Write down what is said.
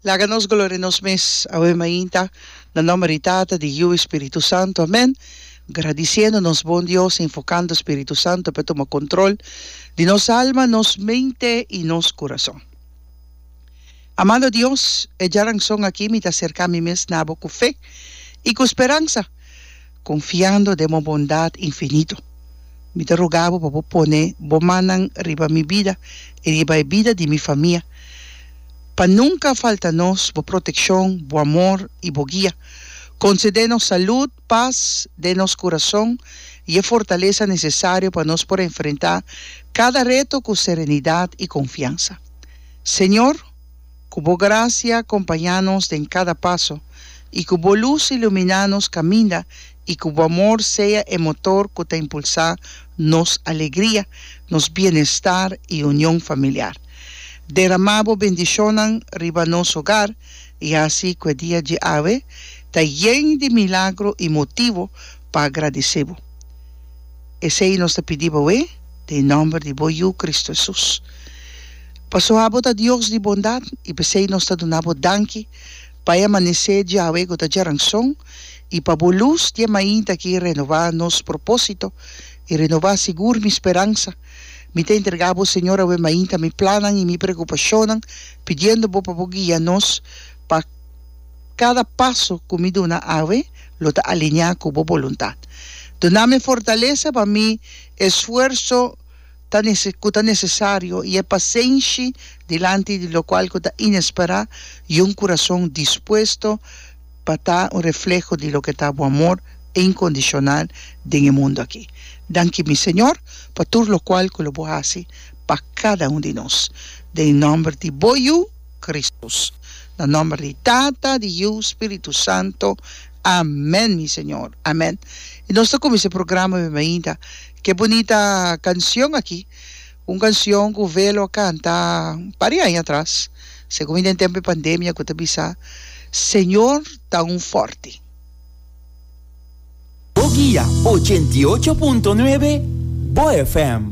Laga nos gloria nos mes awe mainta na nomber di Tata, di Yiu i Spiritu Santu. Amen. Gradisiendo nos bon Dios, invokando Spiritu Santu pa e tuma control di nos alma, nos mente i nos curason. Amado Dios, e djaranson aki mi ta acerca mi mes na bo cu fe i cu speransa. Confiando den bo bondad infinito, mi ta ruga bo pa bo pone bo mannan riba mi bida i riba e bida di mi famia, pa nunca falta nos bo proteccion, bo amor i bo guia. Concede nos salud, paz den nos curazon i e fortaleza necesario pa nos por enfrenta cada reto cu serenidad i confiansa, Señor. Ku Bo grasia kompañá nos den kada paso, i ku Bo lus iluminá nos kaminda, i ku Bo amor sea e motor ku ta impulsá nos alegria, nos bienestar i union familiar. Deramá Bo bendishonnan riba nos hogar, i hasi ku e dia dje awe ta yen di milagro i motivo pa agradisé Bo. Esei nos ta pidi bo awé, den e nòmber di bo Yu, Kristu Hesus. Pasobra abo ta Dios di bondat, i p'esei nos ta duna bo danki pa e amanesé dje awe ku ta djaranson, i pa bo lus dje mainta ki renowá nos propósito i renowá sigur mi speransa. Mi ta entregá bo, Señor, awe mainta mi plannan i mi preokupashonnan, pidiendo bo pa bo guia nos pa. Kada paso ku mi duna awe lo ta alineá ku bo boluntat. Dunami fortalesa pa mi e sfuerso ta ku ta nesesario i e pasenshi dilanti di lokual ku ta inesperá i un kurason dispuesto pa ta un refleho di loke ta bo amor inkondishonal den e mundu aki. Danki mi Señor pa tur lokual ku lo bo hasi pa kada un di nos. Den nòmber di bo Yu. Kristus. Na nòmber di Tata, di Yu, Spiritu Santo. Amèn, mi Señor. Amèn. I nos ta kuminsá e programa mi mainta ku e bunita kanshon aki, un kanshon ku Velo a kanta un par di aña atras, segun mi den tempu di pandemia, ku ta bisa, Señor ta un fòrti. Bo guia ochenta i ocho punto nuebe, bo FM.